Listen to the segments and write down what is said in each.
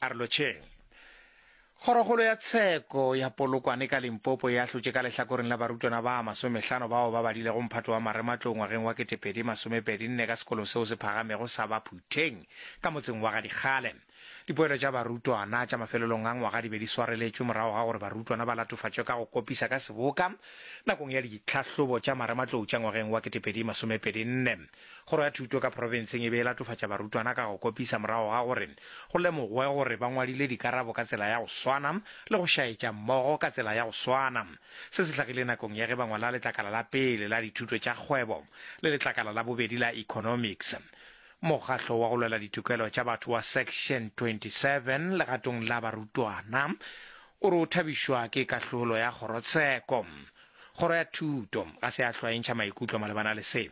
Arolotšheng. Kgorokgolo ya tsheko ya Polokwane ka Limpopo e ahlotše ka lehlakoreng la barutwana ba masomehlano bao ba badilego mphato wa marematlou ngwageng wa ketepedi masomepedi nne ka sekolo seo se phagamego sa ba Phutheng ka motseng wa ga Dikgale. Dipoelo tša barutwana tša mafelelong a ngwaga di be di swareletšwe morago ga gore barutwana ba latofatšwe ka go kopisa ka seboka nakong ya ditlhahlobo tša marematlou tša ngwageng wa ketepedi masomepedi nne. Kgoro ya Thuto ka Profenseng e be e latofatša barutwana ka go kopisa morago ga gore go lemogwe gore ba ngwadile dikarabo ka tsela ya go swana le go šaetša mmogo ka tsela ya go swana. Se se hlagile nakong ya ge ba ngwala letlakala la pele la Dithuto tša Kgwebo le letlakala la bobedi la Economics. Mokgahlo wa go Lwela Ditokelo tša Batho wa Section 27 legatong la barutwana o re o thabišwa ke kahlolo ya kgorotsheko Kgoro ya Thuto ga se ya hlwaentšha maikutlo malebana le se.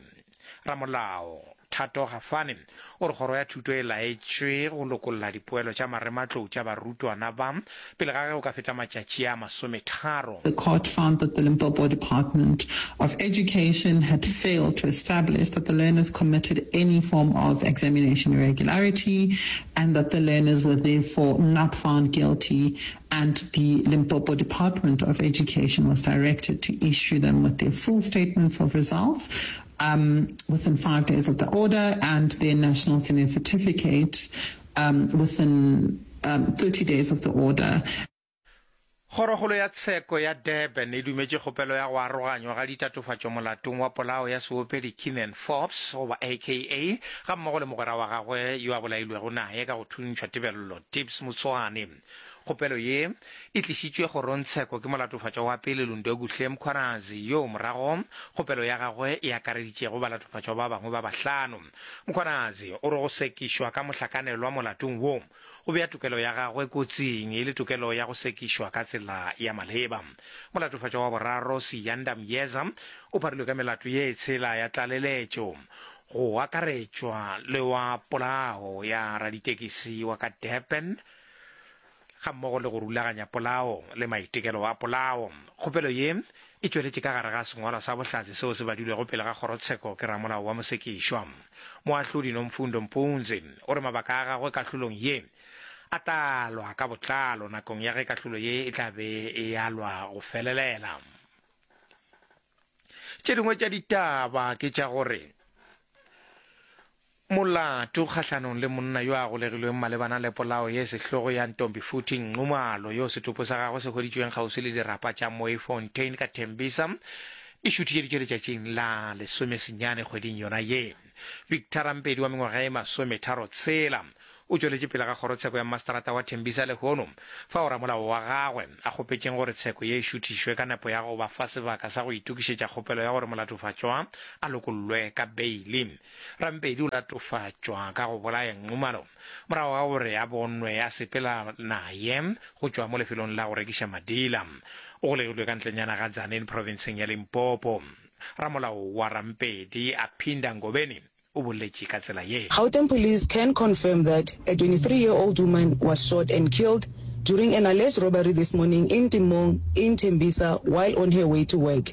Ramolao Thato Gafane o re Kgoro ya Thuto e laetšwe go lokolla dipoelo tša marematlou tša barutwana ba pele ga ge go ka feta matšatši a masometharo. The court found that the Limpopo Department of Education had failed to establish that the learners committed any form of examination irregularity and that the learners were therefore not found guilty and the Limpopo Department of Education was directed to issue them with their full statements of results um, within five days of the order and their national senior certificate um, within um, 30 days of the order. Kgorogolo ya tsheko ya Durban e dumetše kgopelo ya go aroganywa ga ditatofatšo molatong wa polao ya seopedi Keenan Forbes goba aka ga mmogo le mogwera wa gagwe yo a bolailwego naye ka go thuntšhwa tebello Tips Motswane. Kgopelo ye e tlišitšwe kgorongtsheko ke molatofatšwa wa pele Lundokuhle Mkhwanazi yoo morago kgopelo ya gagwe e akareditšego balatofatšwa ba bangwe ba bahlano. Mkhwanazi o re go sekišwa ka mohlakanelwa molatong wo go bea tokelo ya gagwe kotsing e le tokelo ya go sekišwa ka tsela ya maleba. Molatofatšwa wa boraro Siyanda Myeza o pharilwe ka melato ye tshela ya tlaleletšo go akaretšwa le wa polao ya raditekisi wa ka Durban, ga mmogo le go rulaganya polao le maitekelo a polao. Kgopelo ye e tšweletše ka gare ga sengwalwa sa bohlatse seo se badilwego pele ga kgorotsheko ke ramolao wa mosekišwa, Moahlodi Nomfundo Mpunzi, o re mabaka a gagwe kahlolong ye a tla alwa ka botlalo nakong ya ge kahlolo ye e tla be e alwa go felelela. Tše dingwe tša ditaba ke tša gore Molato kgahlanong le monna yo a golegilweng malebana le polao ye sehlogo ya Ntombifuthi Nxumalo yo setopo sa gagwe se hweditšweng kgauswi le dirapa tša Mooifontein ka Tembisa di šuthišeditšwe letšatšing la lesomesenyane kgweding yona ye. Victor Rampedi wa mengwaga e masometharo tshela o tšweletše pele ga kgorotsheko ya mmaseterata wa Tembisa lehono fao ramolao wa gagwe a kgopetšeng gore tsheko ye e šuthišwe ka nepo ya go ba fa sebaka sa go itokišetša kgopelo ya gore molatofatšwa a lokollwe ka beili Rampedi o latofatšwa ka go bolaya Nxumalo morago ga gore a bonwe a sepela naye go tšwa mo lefelong la go rekiša madila. O golegilwe ka ntlenyana ga Tzaneen provinseng ya Limpopo. Ramolao wa Rampedi, Aphinda Ngobeni, o boletše ka tsela ye. Gauteng police can confirm that a 23 year old woman was shot and killed during an alleged robbery this morning in Timong in Tembisa while on her way to work.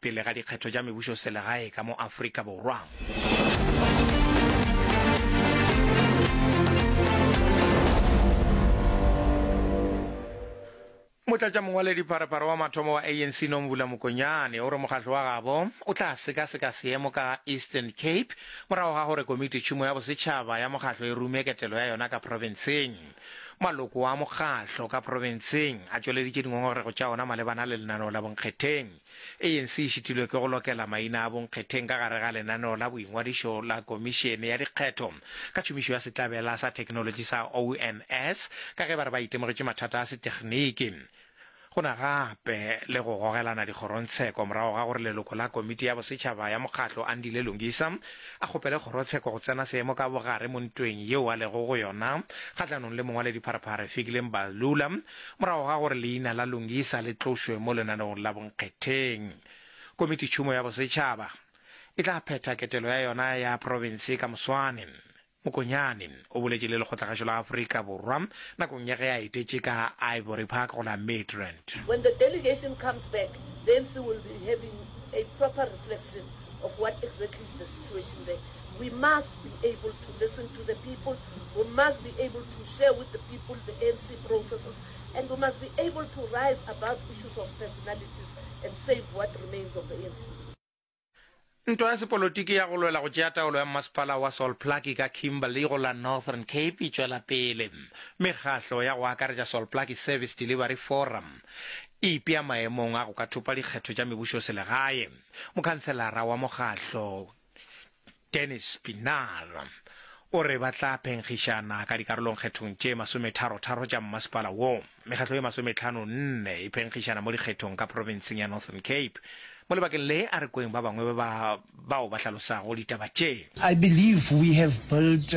pele ga dikgetho tša mebušoselegae ka mo Afrika Motlatšamongwaledipharephare wa mathomo wa ANC Nomvula Mokonyane o re mokgatlo wa gabo o tla sekaseka seemo ka Eastern Cape morago ga gore Komitetšhumo ya Bosetšhaba ya mokgatlo e rume ketelo ya yona ka profenseng. Maloko a mokgatlo ka profenseng a tšweleditše dingongorego tša ona malebana le lenaneo la bonkgetheng. ANC e šitilwe ke go lokela maina a bonkgetheng ka gare ga lenaneo la boingwadišo la Komišene ya Dikgetho ka tšhomišo ya setlabela sa theknolotši sa ONS ka ge ba re ba itemogetše mathata a setekniki go na gape le go gogelana dikgorontsheko morago ga gore leloko la Komiti ya Bosetšhaba ya Mokgatlo Andile Lungisa a kgopele kgorotsheko go tsena seemo ka bogare mo ntweng yeo a lego go yona kgahlanong le mongwaledipharephare Fikile Mbalula Morago ga gore leina la Lungisa le tlošwe mo lenaneong la bonkgetheng, Komititšhumo ya Bosetšhaba e tla phetha ketelo ya yona ya profense ka moswane. Mokonyane o boletše le lekgotlagašo la Afrika Borwa nakong ya ge a etetše ka Ivory Park go la Midrand. When the delegation comes back, the ANC will be having a proper reflection. of what exactly is the situation there. We must be able to listen to the people, we must be able to share with the people the ANC processes, and we must be able to rise above issues of personalities and save what remains of the ANC. Ntwa ya sepolotiki ya go lwela go tšea taolo ya mmasepala wa Sol Plaatje ka Kimberley go la Northern Cape e tšwela pele. Mekgahlo ya go akaretša Sol Plaatje Service Delivery Forum e ipea maemong a go ka thopa dikgetho tša mebušoselegae. Mokhanselara wa mokgahlo Dennis Pienaar o re ba tla phenkgišana ka dikarolong kgethong tše masometharotharo tša mmasepala wo. Mekgahlo e masometlhano nne e phenkgišana mo dikgethong ka provinseng ya Northern Cape. Mo lebakeng le a re kweng ba bangwe ba bao ba hlalosago ditaba tše. I believe we have built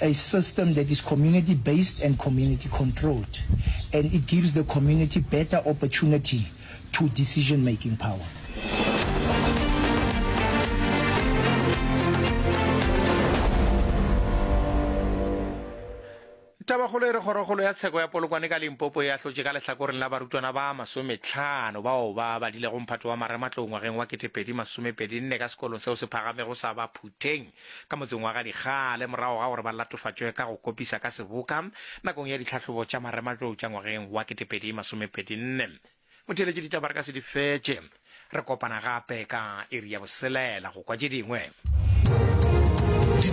a system that is community based and community controlled and it gives the community better opportunity to decision making power. Tabakgolo e re kgorokgolo ya tsheko ya Polokwane ka Limpopo e ahlotše ka lehlakoreng la barutwana ba masometlhano bao ba badilego mphato wa marematlou ngwageng wa ketepedi masomepedinne ka sekolong seo se phagamego sa Baphutheng. ka motseng wa ga Dikgale morago ga gore ba latofatšwe ka go kopisa ka seboka nakong ya ditlhahlobo tša marematlou tša ngwageng wa 2024. Motheeletši ditaba re ka se di fetše. Re kopana gape ka iri ya boselela go kwa tše dingwe.